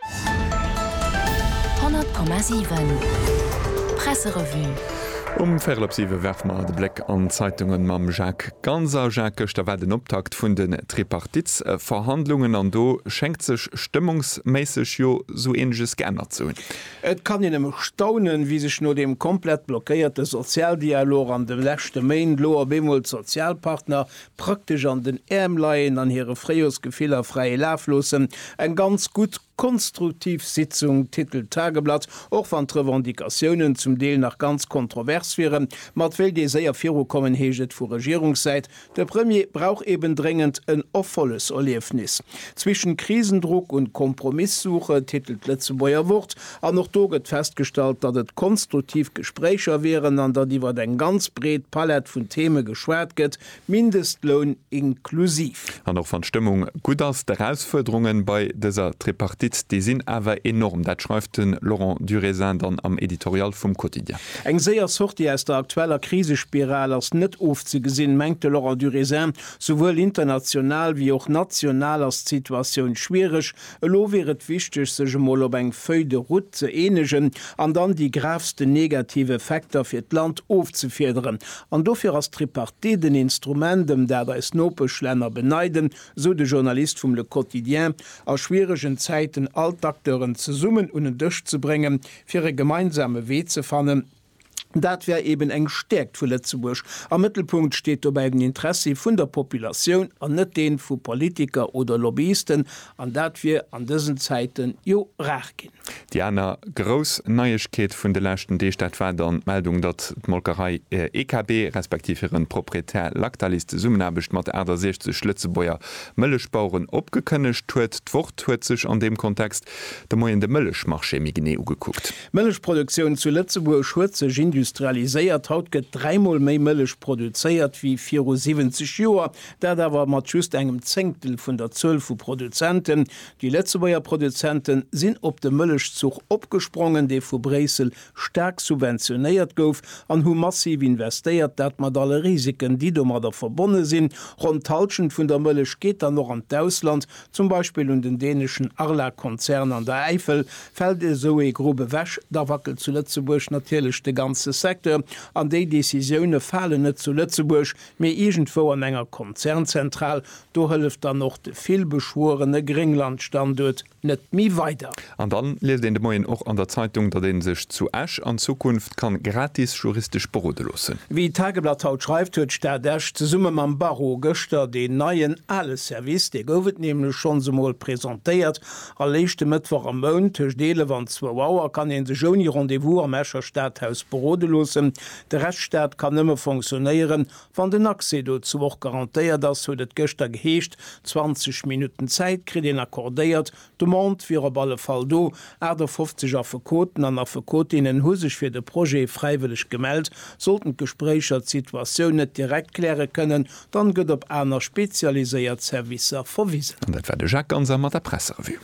100,7 Presserevue Um Véierel op siwe werfe mer de Bléck an d'Zeitunge mam Jacques Ganser. Jacques, gëschter war den Optakt vun den Tripartitsverhandlungen an do schéngt sech stëmmungsméisseg jo sou eeneges geännert ze hunn. Et kann een nëmme staunen, wéi sech no deem komplett blockéierte Sozialdialog an de leschte Méint elo op eemol d'Sozialpartner praktesch an den Äerm leien an hire Fréijorsgefiller fräie Laf loossen. Eng ganz gutt, konstruktiv Sitzung, titelt d'Tageblatt, och wann d'Revendicatiounen zum Deel nach ganz kontrovers wieren. Ma et wéilt ee séier virukommen, heescht et vu Regierungssäit. De Premier brauch eben dréngend en Erfolleserliefnis. Zwischen Krisendruck und Kompromisssuche, titelt d'Lëtzebuerger Wort, An och do gëtt festgestallt, datt et konstruktiv Gespréicher wieren an datt iwwer eng ganz breet Palett vun Theme geschwat gëtt, Mindestloun inklusiv. An och wann d'Stëmmung gutt ass, d'Erausfuerderunge bei dëser Tripartite, déi sinn awer enorm. Dat schreift de Laurent Durézin dann am Editorial vum Quotidien. Eng séier Sortie aus der aktueller Krisespiral ass net ofzegesinn, mengt de Laurent Durézin. Souwuel international wéi och national ass d'Situatioun schwiereg, Elo wier et wichteg, sech emol op eng Feuille de route ze eenegen an dann déi gravsten negativ Effekter fir d'Land ofzefiederen. An dofir ass d'Tripartite en Instrument, ëm dat eis Nopeschlänner beneiden, sou de Journalist vum Le Quotidien, a schwieregen Zäiten all d'Acteuren zesummen un en Dësch ze bréngen, fir e gemeinsame Wee ze fannen. Dat wär eben eng Stäerkt vu Lëtzebuerg. Am Mëttelpunkt steet dobäi den Interessi vun der Populatioun an net dee vu Politiker oder Lobbyisten, an dat wier an dësen Zäiten jo rar ginn. Déi aner grouss Neiegkeet vun de leschten Deeg, dat war dann d'Meldung, datt d'Molkerei EKB respektiv hiren Proprietär Lactalis d'Zesummenaarbecht mat 68 Lëtzebuerger Mëllechbaueren opgekënnegt huet. D'Wort huet sech an deem Kontext de Moien de Mëllechmarché méi genee ugekuckt. D'Mëllechproduktioun zu Lëtzebuerg huet sech industrialiséiert. Haut gëtt dräimol méi Mëllech produzéiert wéi viru 70 Joer, dat awer mat just engem Zéngtel vun der Zuel vu Produzenten. Déi Lëtzebuerger Produzente sinn op de Mëllechzuch opgesprongen, dee vu Bréissel staark subventionéiert gouf, an hu massiv investéiert, dat mat alle Risiken, déi domadder verbonne sinn. Ronn d'Hallschent vun der Mëllech geet dann och an d'Ausland, Zum Beispill un den däneschen Arla-Konzern an der Äifel. Fält esou ee Grupp ewech, da wackelt zu Lëtzebuerg natierlech de ganze Secteur. An déi Decisioune falen net zu Lëtzebuerg, mee iergendwou an enger Konzernzentral. Do hëlleft dann och de villbeschwuerene Gréngland-Standuert net méi weider. An dann liest een de Moien och an der Zeitung, datt een sech zu Esch an Zukunft kann gratis juristesch berode loossen. Wéi d'Tageblatt haut schreift, huet d'Stad Esch zesumme mam Barreau gëschter deen neien ale Service, dee gouf et nämlech schonns emol, presentéiert. All éischte Mëttwoch am Mount tëscht 11 an 2 Auer kann ee sech ouni Rendez-vous am Escher Stadhaus berode loossen. De Rescht Stad kann nëmme fonctionnéieren, wann den Accès dozou och garantéiert ass, huet et gëschter geheescht. 20 Minutten Zäit kritt een accordéiert, D'Demande wier op alle Fall do, 58 Affekoten an Affekotinnen hu sech fir de Projet fräiwëlleg gemellt. Sollten d'Gespréicher d'Situatioun net direkt kläre kënnen, dann gëtt op aner spezialiséiert Servicer verwisen. An dat war de Jacques Ganser mat der Presserevue.